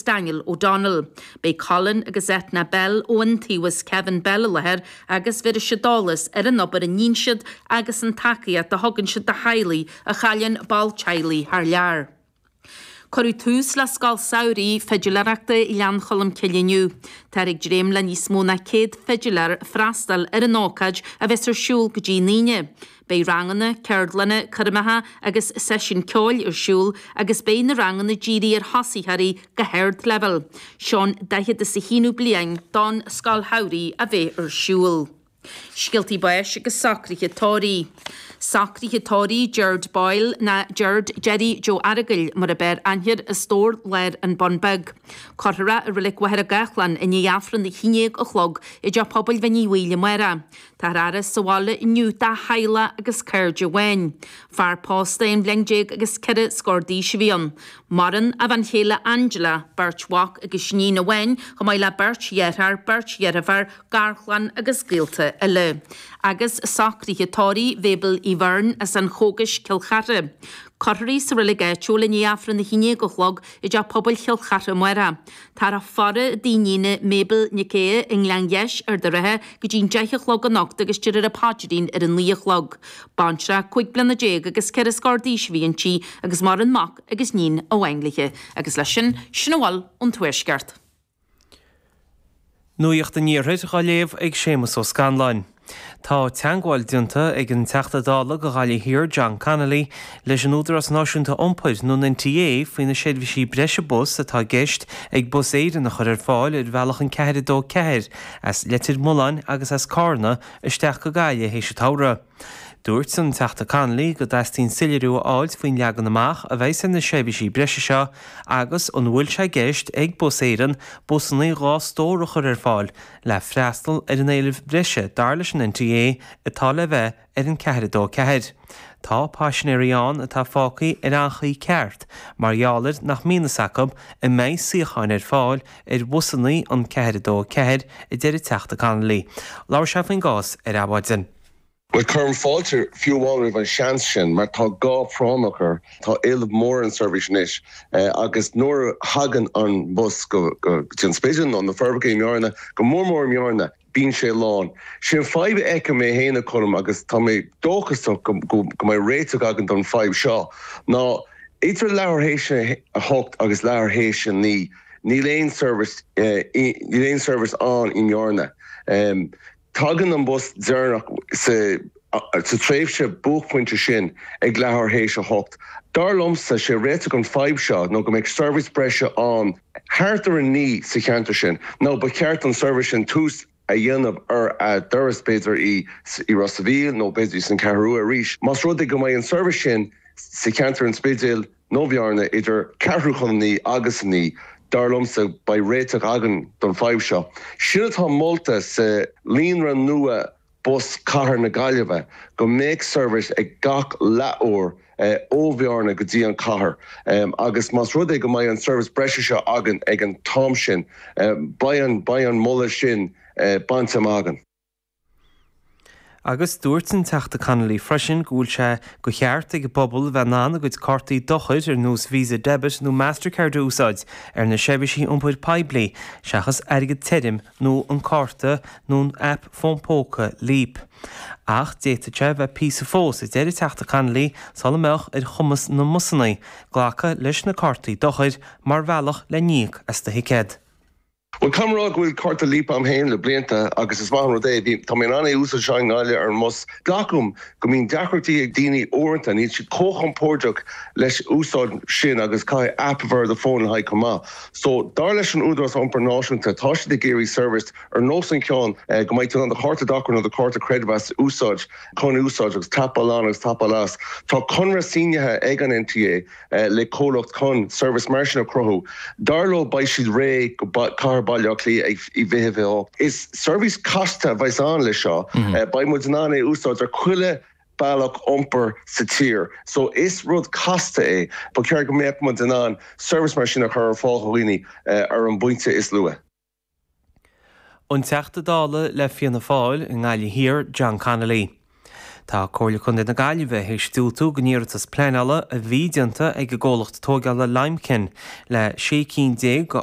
Daniel O'Donnell. Beidh Colin agus Eithne Bell ó Iontaobhas Kevin Bell i láthair agus bhéarfaidh siad eolas ar an obair a níonn siad agus ar an tacaíocht a thugann siad do theaghlaigh a chailleann ball teaghlaigh thar lear. Cuireadh tús le Scoil Samhraidh Fidiléireachta Ghleann Cholm Cille inniu. Táthar ag dréim le níos mó ná 100 fidiléir freastáil ar an ócáid a bheas ar siúl go dtí an Aoine, Beidh ranganna, ceardlanna, coirmeacha seisiúin ceoil ar siúl agus beidh na ranganna dírithe ar thosaitheoirí go hardleibhéal. Seo an daichead is a haonú bliain don Scoil Samhraidh a bheith ar siúl. Scéaltaí Báis agus Socruithe Tórraimh. Socruithe Tórraimh Gerard Boyle nó Gerard, Gerry, Joe Earagail mar ab fhearr aithne air, An tSráid Láir, An Bun Beag. Cuirfear é i Reilig Mhachaire Gathlán i ndiaidh Aifreann a haon dhéag a chlog i dTeach Pobail Mhín Uí Bhaoill amárach. Tá a fhaire sa bhaile inniu dá theaghlaigh agus cairde amháin. Fear pósta aon bhliain déag agus ceithre scór d'aois a bhí ann. Maireann a bhean chéile Angela, beirt mhac agus iníon amháin, chomh maith le beirt dheartháir, beirt dheirféar, garchlann agus gaolta eile. Agus socruithe tórraimh Mhabel Uí Bheirn as an Chógais, Cill Chartha. Cuirfear í sa reilig áitiúil i ndiaidh Aifreann a haon dhéag a chlog i dTeach Pobail Chill Chartha amárach. Tá a faire i dtigh a hiníne Mabel Nic Aodh i nGleann Gheis Ard an Rátha go dtí'n deich a chlog anocht agus déarfar an paidrín ar a naoi a chlog. Baintreach cúig bliana déag agus ceithre scór d'aois a bhí inti agus maireann mac agus níon amháin léithe. Agus leis sin, sin a bhfuil ón Tuaisceart. Nuacht an Iarthair dá léamh ag Séamus Ó Scanláin. Tá teagmháil déanta ag an Teachta Dála do Ghaillimh Thiar, John Connolly, leis an Údarás Náisiúnta Iompair, nó an NTA, faoi na seirbhísí breise bus atá i gceist ag Bus Éireann a chur ar fáil ar bhealach an 424 as Leitir Mealláin agus as Cárna isteach go Gaillimh théis an tsamhraidh. Dúirt an Teachta Connolly go dteastaíonn soiléiriú a fháilt faoin leagan amach a bheas ar na seirbhísí breise seo agus an bhfuil sé i gceist ag Bus Éireann busanna dhá stór a chur ar fáil le freastal ar an éileamh breise dar leis an NTA atá le bheith ar an 4-2-4. Tá paisinéirí ann atá fágtha ar anchaoi cheart mar gheall air nach mbíonn fhios acu an mbeidh suíocháin ar fáil ar bhusanna an 4-2-4 a deir an Teachta Connolly. Labhair sé faoin gcás ar Adhmhaidin. Bhuel, cuirim fáilte fiú amháin roimh an seans sin, mar tá gá práinneach leis. Tá éileamh mór ar an tseirbhís anois agus nuair a thagann an bus go dtí an Spidéal nó na Forbacha i mBearna, go mór mór i mBearna, bíonn sé lán. Sin fadhb a fheicim mé féin a Colm agus tá mé dóchasach go mbeidh réiteach againn don fadhb seo ná idir leathuair théis a hocht agus leathuair théis a naoi, níl aon seirbhís, níl aon seirbhís ann i mBearna. Tagann an bus deireanach sa tréimhse buaicphointe sin ag leathuair théis a hocht. Dar liomsa, 'sé réiteach an fadhb seo nó go mbeidh seirbhís breise ann thart ar a naoi sa cheantar sin, nó ba cheart don seirbhís sin tús a dhéanamh ar a dturas, b'fhéidir i Ros a Mhíl nó b'fhéidir san Cheathrú Rua arís, más rud é go mbeidh an seirbhís sin sa cheantar an Spidéil. nó i mBearna idir ceathrú chun a naoi agus a naoi, dar liomsa, beidh réiteach againn don fadhb seo. Sin atá molta sa líonra nua bus Cathair na Gaillimhe, go mbeadh seirbhís ag gach leath uair ó Bhearna go dtí an Chathair agus más rud é go mbeidh an seirbhís breise seo againn ag an t-am sin, beidh an, beidh an moladh sin bainte amach againn. Agus dúirt an Teachta Connolly freisin go bhfuil sé de cheart ag an bpobal a bheith in ann a gcuid cártaí dochair ar nós Visa Debit nó Mastercard a úsáid ar na seirbhísí iompair poiblí seachas airgead tirim nó an cárta nó an aip fón póca Leap. Ach d'fhéadfadh sé bheith píosa fós, a deir an Teachta Connolly, sula mbeadh ar chumas na mbusannaí glacadh leis na cártaí dochair mar bhealach le n-íoc as do thicéad. Bhuel, caithfidh mé a rá go bhfuil cárta Leap agam féin le blianta agus is maith an rud é. Bhí, tá mé in ann é a úsáid anseo i nGaillimh ar an mbus. Glacaim go mbíonn deacrachtaí ag daoine uaireanta, níl siad chomh chompóirdeach leis úsáid sin agus caithfidh app a bheith ar do fón le haghaidh chomh maith. So, dar leis an Údarás Iompair Náisiúnta, tá siad ag iarraidh seirbhís ar nós an cheann go mbeidh tú in ann do chárta dochair nó do chárta creidmheas a úsáid, chun úsáid agus tapáil on agus tapáil as. Tá conradh sínithe ag an NTA. le comhlacht chun seirbhís mar sin a chruthú. Dar leo, beidh siad réidh do Cathair Bhaile Átha Cliath i 2028. Is seirbhís casta a bheas ann le seo. Beidh muid in ann é a úsáid ar chuile bealach iompair sa tír. So is rud casta é. Ba cheart go mbeadh muid in ann seirbhís mar sin a chur ar fáil do dhaoine ar an bpointe is luaith. An Teachta Dála le Fianna Fáil i nGaillimh Thiar, John Connolly. Tá Comhairle Contae na Gaillimhe théis diúltú don iarratas pleanála a bhí déanta ag an gcomhlacht tógála Limekiln le 16 cinn a